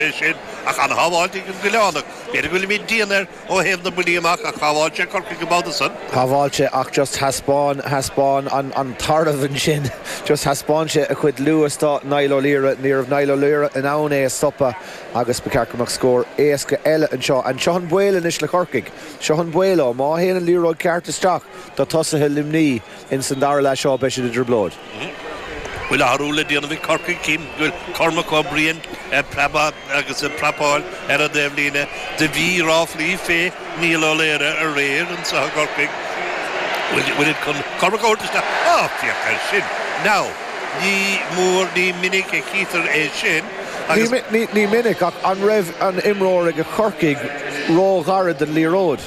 é sin, ach an-shábháilte ag an gCoileánach. B'fhéidir go bhfuilimid dian air ó thaobh na mbuillí amach, ach shábháil sé Corcaigh an babhta san. Shábháilte, ach just thaispeáin, thaispeáin an tarbh ansin, just thaispeáin sé a chuid luas do Niall Ó Laoire. Ní raibh Niall Ó Laoire in ann é a stopadh agus ba cheart go mbeadh scór éasca eile anseo. And seo an baol anois le Corcaigh, seo an baol leo, má théann an liathróid ceart isteach do tosaithe Luimnigh, Ins an dara leath seo beidh siad i dtrioblóid. Bhfuil athrú le déanamh ag Corcaigh? Cím go bhfuil Cormac Ó Briain ag preabadh agus ag prapáil ar an dtaobhlíne do bhí ráflaí fé Niall Ó Laoire aréir anso i gCorcaigh. Bhfuil siad chun Cormac a thabhairt isteach? Á, féach air sin now! Ní mór, ní minic a chítear é sin agus. Ní minic, ach an raibh an imreoir age Corcaigh ró-ghairid don liathróid?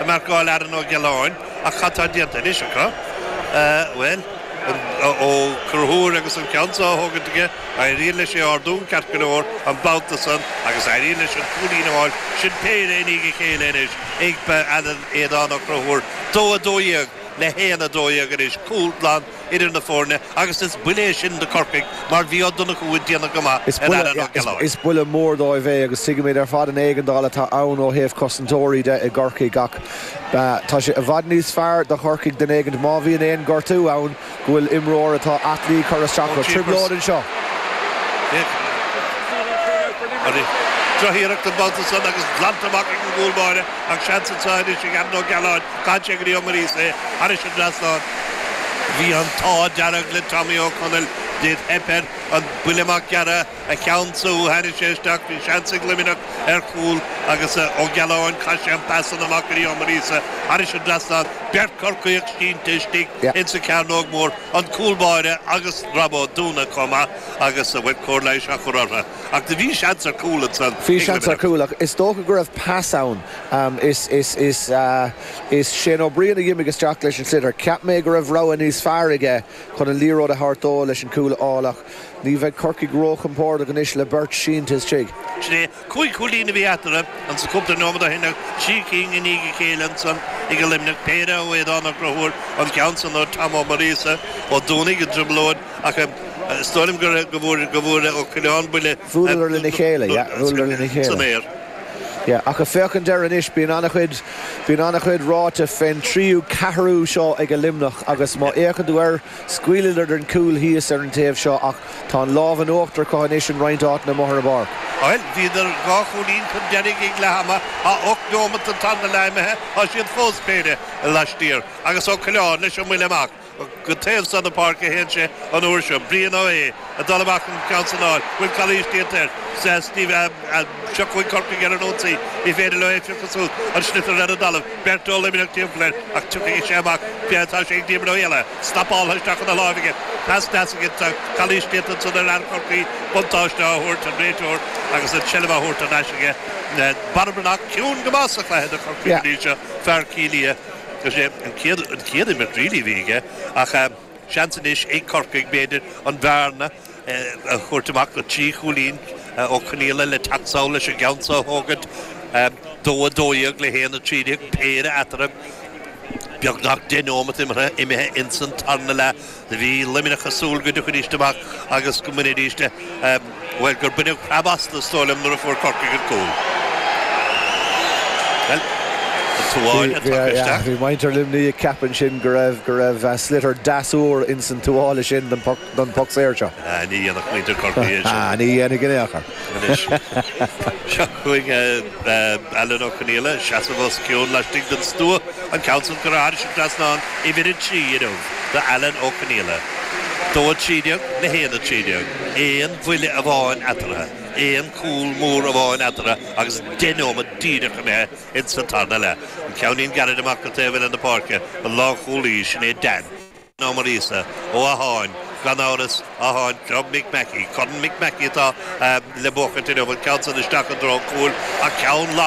ag marcáil Aran Ó Giolláin ach cad tá déanta anois acu? Bhuel, Ó Conchúir agus an ceann seo á thógaint aige, éiríonn leis é a ardú ceart go leor an babhta san agus éiríonn leis an cúilín a fháil sin péire i ndiaidh a chéile anois ag Alan Aodhán Ó Conchúir, dó a dó dhéag le haon a dó dhéag anois, cúl glan. idir na foirne agus is buille é sin do Corcaigh mar bhí Ó Donnchú ag déanamh go maith ar Aran Ó Giolláin. Is buille mór dóibh é agus tuigimid ar fad an éigeandáil atá ann ó thaobh cosantóirí de i gCorcaigh ach tá sé i bhfad níos fearr do Chorcaigh den éigin má bhíonn aon gortú ann go bhfuil imreoir atá aclaí á chur isteach acu. Trioblóid anseo. Droch-iarracht an babhta san agus glanta amach ag an gcúl báire ach seans anseo anois ag Aran Ó Giolláin. Chaith sé go dtí Ó Muiríosa thairis an dtrasnán. Bhí an t-ádh dearg le Tommy Ó Conaill, do theip air an buille amach gearra a cheannsú, tháinig sé isteach, bhí seans ag Luimneach ar chúl agus Ó Giolláin chaith sé an pas san amach go dtí Ó Muiríosa thairis an dtrasnán, beirt Corcaíoch sínte istigh ins an cearnóg mór, an cúl báire agus Rob Ó Dúnaigh comh maith agus a bhfuil cóir leighis á chur ortha. Ach do bhí seans ar cúl ansan ag Luimneach. Bhí seans ar chúl ach is dócha go raibh pas ann. Is Shane Ó Briain a dh'imigh isteach leis an sliotar. Cheap mé go raibh rogha níos fearr aige chun an liathróid a thabhairt dó leis an chúl a fháil ach ní bheidh Corcaigh róchompordach anois le beirt sínte istigh. Sin é. Cúig chúilín a bhí eatarthu anso cúpla nóiméad ó shin ach trí cinn i ndiaidh a chéile ansan ag Luimneach, péire ó Aodán Ó Crothúir, an ceann san ó Tom Ó Muiríosa, Ó Dúnaigh i dtrioblóid ach is dóigh liom go bhfuair Ó Coileáin buille san aer. Yeah, ach ag féachaint air anois, bíonn an-chuid, bíonn an-chuid ráite fén tríú, ceathrú seo aige Luimneach agus má fhéachann tú air, scaoileadar den chúl thíos ar an taobh seo ach tá an lámh in uachtar acu anois in roinnt áiteanna amuigh ar an bpáirc. Bhuel, bhíodar dhá chúilín chun deiridh ag leath ama, tá ocht nóimeat den tarna leath imithe, tá siad fós péire laistiar agus Ó Coileáin leis an mbuille amach. Go taobh san na páirce a théann sé an uair seo. Brian Ó hÉ ag dul amach chun ceann san a fháil, bhfuil calaois déanta air. Steve Seo chugainn Corcaigh ar an ionsaí. Ní féidir leo é phiocadh suas. An sliotar ar an dtalamh. Beirt ó Luimneach timpeall air ach tiocfaidh sé amach b'fhéidir, tá sé ag Diarmuid Ó hÉalaithe. Snapáltha isteach chun a láimh aige. Pas deas aige ach calaois déanta ansan ar fhear Chorcaí. Buntáiste á thabhairt ag an réiteoir agus an tseilbh á thabhairt thar n-ais aige. Barra Breathnach ciúin go maith sa chluiche do Chorcaigh go dtí seo. Fear Cill Ia. Is é an chéad an chéad imirt really a bhí aige ach seans anois ag Corcaigh b'fhéidir an bhearna a thabhairt amach go trí chúilín Ó Conghaile le teacht sall leis an gceann seo a thógaint. Dó a dó dhéag le haon a trí déag péire eatarthu. Beagnach deich nóimeat imeartha imithe ins an tarna leath. Bhí Luimneach ag súil go dtiocfaidís amach agus go mbainfidís, bhuel, gur baineadh preab astu, is dóigh liom, nuair a fuair Corcaigh an cúl. Bhuel, an tuáille a tugadh isteach. Bhí muintir Luimnigh ag ceapadh ansin go raibh, go raibh sliotar deas úr ins an tuáille sin don phoc, don phoc saor seo. Ní dhéanfadh muintir Chorcaí é sin. Ní dhéanfadh in aon chor. Anois, seo chugainn. Bheadh Alan Ó Conghaile ag seasamh os cionn laistigh den stua, an ceann san go raibh arís thar trasnán, uimhir a trí, inniu, do Alan Ó Conghaile. Dó a trí déag le haon a trí déag. Aon bhuille amháin eatartha. Aon chúl mór amháin eatartha agus deich neomat díreach imithe ins an tarna leath. An ceannín gairid amach go taobh eile na páirce, an lánchúlaí, sin é Dan. Ó Muirgheasa, ó Atháin, gan amhras, Atháin club Mic Mackey, Corn Mic Mackey atá le buacairt inniu, bhuel ceann san isteach i dtreo cúil ach ceann lag.